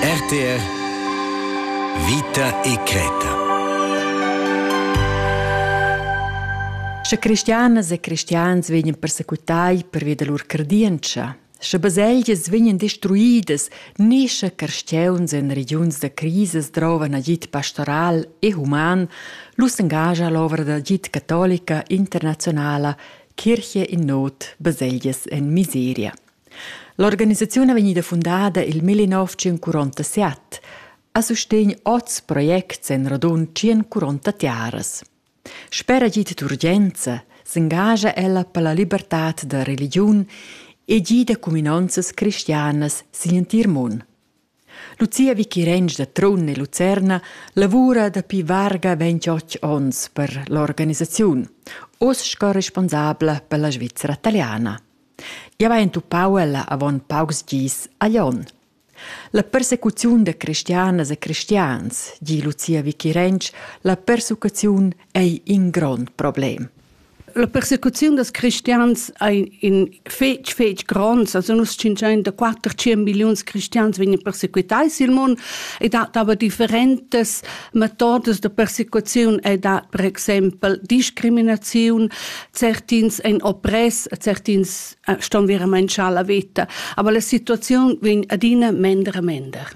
RTR Vita e creta Sche cristianas e cristians vegnan persecutai pervia da lur credientscha, sche baselgias vegnan destruidas ni sche carstgeuns en regiuns da crisis drovan agid pastoral e human, lu s'engascha l'ovra d'agid catolica internazionala Kirche in not, baselgias en miseria. L'organisaziun è vegnida fundada il 1947 a sustegn oz projects en radund 140 tiaras. Sper agid d'urgenza s'engascha ella per la libertad da religiun e gida cuminanzas cristianas sin entir mund. Lucia Vichirensch da Trun e Lucerna lavura dapi varga 28 onns per l'organisaziun, oz sco responsabla per la Svizra italiana. Jau hai entupau ella avon paucs gis a Lyon. La persecuziun da cristianas e cristians, di Lucia Vichirensch, la persucaziun ei in grond problem. La persecuziun dals cristians ei in fetg fetg gronds, also nus 500 milliuns cristians vegnan persequitai sil mund e dat aber differentas metodas da persecuziun e dat per exempel discriminaziun, certins ein oppress, certins äh, ston veramein schar la veta, aber la situaziun vegn adina mender e mender.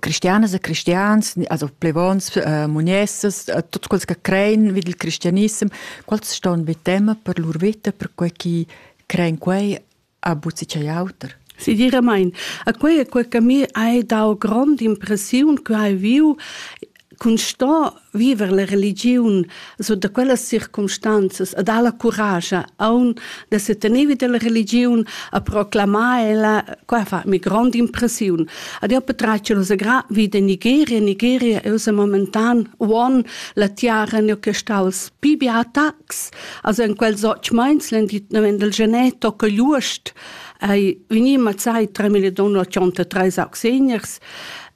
cristianas e cristians, also plevons, äh, muniessas, äh, tuts quels che crein vid il cristianissem, quels ston be tema per lur vita, per quei chi crein quei a buzzi chei auter. Sinceramente, a quei, quei che mi hai dau grande impressione che hai viu cun sto viver la religiun so da quellas circumstanzas a dar la curascia aun da se tenevi della religiun a proclamar ella qua fa mi grande impressione ad io petraccio la gra vita in Nigeria Nigeria è usa momentan one la tiara ne che sta als pibi attacks also in quel soc mainsland die wenn del geneto che giust ai veniva sai 3883 seniors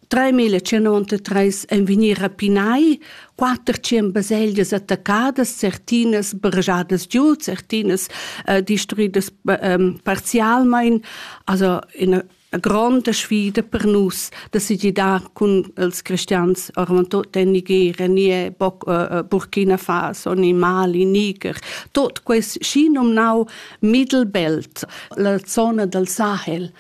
3093 en vegnir rapinai, quatter tschien baselgias attaccadas, certinas bergiadas giu, certinas uh, distruidas um, parzialmein, also in a gronda sfida per nus da se gidar cun els cristians orman tot en Nigeria, nie boc, uh, Burkina Faso, ni Mali, Niger, tot quest schi nomnau Mittelbelt, la zona del Sahel,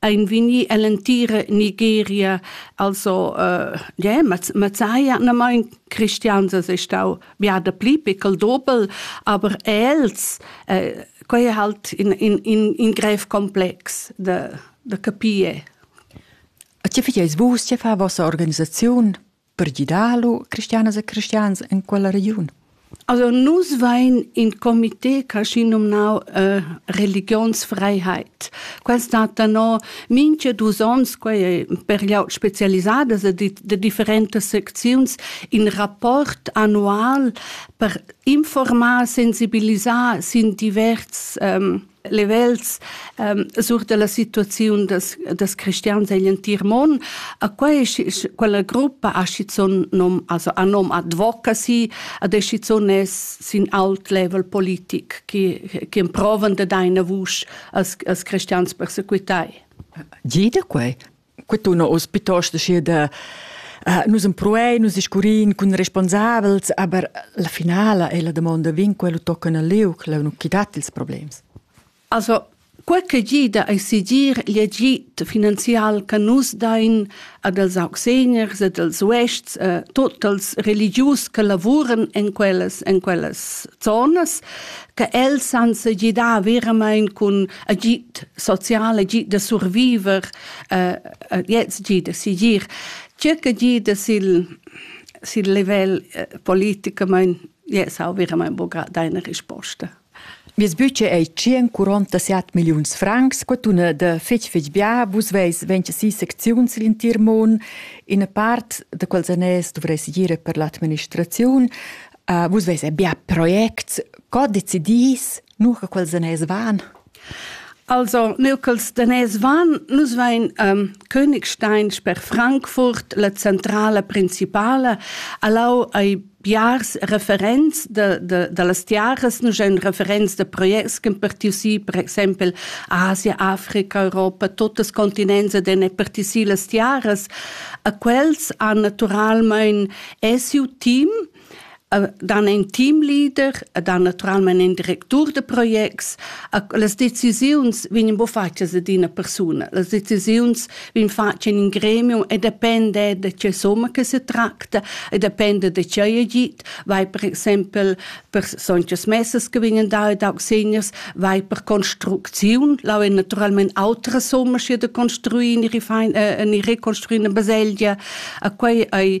ein vegni ell'entira Nigeria, also äh, yeah, Mazzaya, na mein Christians es stau ja da pli pickel dobel, aber els, äh, quei è halt in, in, in, in grev komplex da, da capire. A tge fai vus, tge fa vostra organisaziun? Per gidar lu cristianas e cristians en quella regiun? Also nus vein in comité caschi nomnau äh, Religionsfreiheit. Quel stat da no minche dus ons, quei per glieud specialisadas de, de differentas secziuns, in rapport annual per informar, sensibilisar sin divers ähm, livels ähm, sur della situazione des, des cristians in l'entir mond. A quella gruppa ha schizun nom, also a nom advocacy, a decision es sin alt level politik che, che provan de deine vusch als, als cristians persequitai. Jeder quei quetuna oz pitost aschi da Uh, nus empruein, nus iscurin cun responsabels, aber la finala è la domanda vin quello toccano al liuc, la non chi dat ils problems. Also, quel che gida a sigir l'agit finanzial che nus dain ad els auxeniers ed als uests, eh, tot els religius che lavuren in quellas, in quellas zonas, che els san se gidar veramente con agid social, agid da surviver, äh, jetzt agid da sigir, circa agid sil sil livel äh, politicamain yes, ha verament bogat deine risposta. Mies budget ei 147 milliuns francs, quatuna da fetg fetg bia, vus veis 26 secziuns l'intir mon, in part da quels anès dovreis gire per l'administraziun, uh, vus veis bia projects, co decidis nu che quels daners van. Also, nu ch'els daners van, nus vain um, Königstein per Frankfurt, la centrala principala, allau ai biars referents de, de, de las tiaras, nus en referents de projects che partiu si, per exempel Asia, Africa, Europa, totes continents ed en partiu si las tiaras, a quels han naturalmein esiu team, dann ein Teamleader, dann naturalmente ein Direktor de Projekts. Las decisiuns vegnan bo fatgas ad ina persuna. Las decisiuns vegnan fatgas in in gremium e depende da che somma che se tracta e depende da che è git. Vai per exempel per sonchas messas che vegnan da ed auch seniors, vai per Konstruktion. Là è naturalmente altra somma che da construire, äh, eine rekonstruierte Baselgia. Quei ei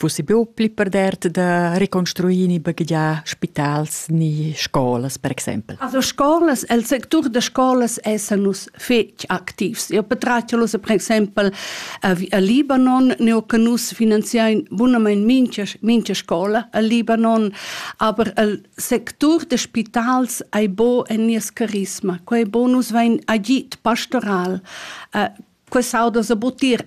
Vus buca pli perdert da reconstruir ni baghegiar spitals ni scolas, per exempel? Also scolas, el sectur da scolas essen nus fetg activs. Io petratschalus per exempel a, a Libanon, neu che nus finanziain bunamain mincha, mincha scola a Libanon, aber el sectur da spitals ei bo en nies carisma. Quei bo nus vein agit pastoral. Uh, Quest'auda sa butir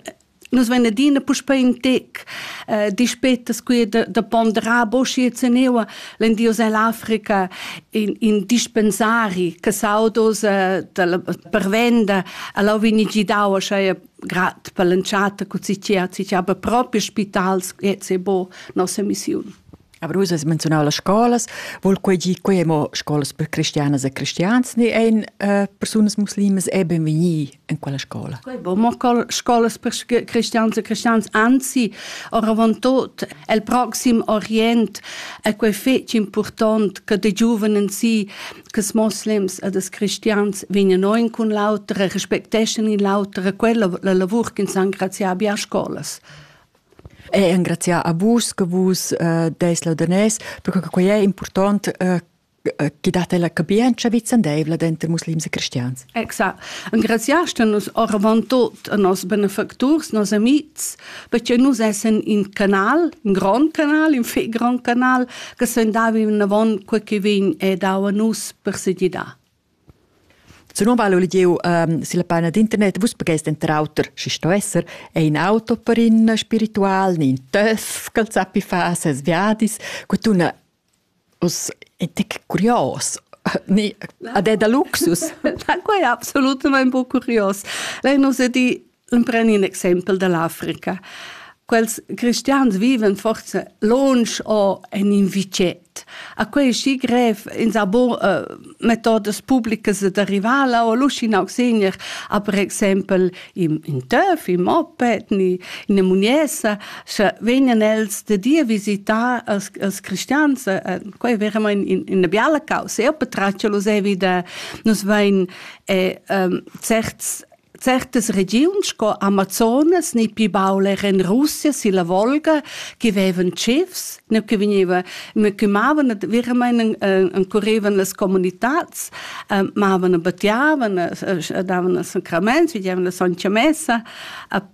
Nus vein adina puspei in tec eh, dispeta scuir da, da ponderar bo schi e zeneva l'endios ell'Africa in, in dispensari che saudos eh, dalla pervenda alla vini gidau schei grad per l'entschatta cu si chia si aber proprio spitals e se bo nos emissiun. Abrus has menziunau las scolas, vul quei gi quei mo scolas per cristianas e cristians ni ein uh, persunas muslimas e benvegni in quella scola? Quei bo mo scolas per cristians e cristians, anzi, oravontot el proxim Orient è quei fetg important che de giuvenen si che moslems e des cristians vegnan in cun l'autra, respecteschan in l'autra, quella la lavur che in san graziar a scolas. E engraziar a vus che vus eh, deis laudanès, perche quei è important eh, che date la capienza vicendeivla denter muslims e cristians. Exact. Engraziaste nus oravantut a nos benefacturs, nos amics, perché nus essen in canal, in grand canal, in fe grand canal, che sen davi in avon quel che vegn e dau a nus per se di da. Zunom val il gieu ehm silla paina d'internet. Vus pagais denter auter, schi sto esser, ein auto per in spiritual, in töff ch'el sappi far ses viadis. Quetuna uss in tec curios. Ni ad è da luxus? Quai è absolutament buc curios. Lei nos è di empren in exempel dall'Africa. Quels cristians viven forse lunsch o en in vicet. A quei schi grev in sa bon uh, metodas publicas da rivala o luscin auxigner a per exempel in, in töf, in moped, in in muniesa, sche vegnan els de dir visitar als, als cristians, uh, quei veramente in, in una biala causa, io petraccio lo sevi da, nos vein eh, um, certs Certas regiuns sco Amazonas ni pli baul era en Russia silla Volga che vevan tschifs, ne che vegnevan, me che mavan veramein encurevan las comunitads, eh, mavan e battiavan, eh, davan sacraments, vigevan la soncia messa,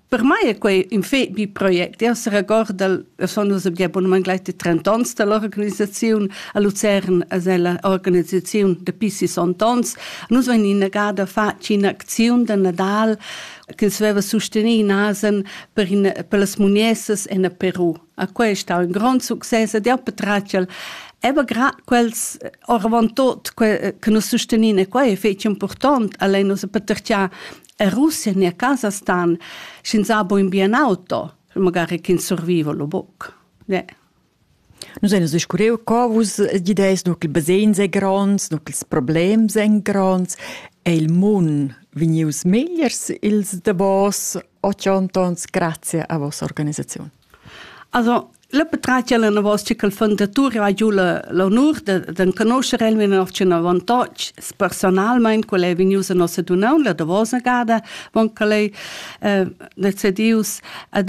Per mai è quei in fet bi project. Io seregorda, sono nus abunament gleich de 30 ans dall'organisaziun a Lucern, as è la organisaziun dapi 60 ans. Nus vein innegada fatg in'acziun da Nadal che sveva sostenere in asen per, in, per las muniessas en Peru. A quei è stato un grande successo ed io patracel Eba grad quels oravant tot che, che nos sosteniva e quei è fetg important, allein nus patertia E Russia en a casa stan sch'ins ha buin bien auto, magari ch'ins surviva lo buc. Yeah. Nus ein scuriu co vus gideis, nu ch'il basegns ei gronds, nu ch'ils problems ein gronds. È il mun vegnius megliers ils davos otg ontons grazie a vossa organisaziun? Also, le patratgia l'anavos che col fondatur ha giu l'honur d'enconoscher el in otschen avantatg personalmein quel ei vegnius a nossa dunaun la davosa gada, bon quel ei eh, decedius ad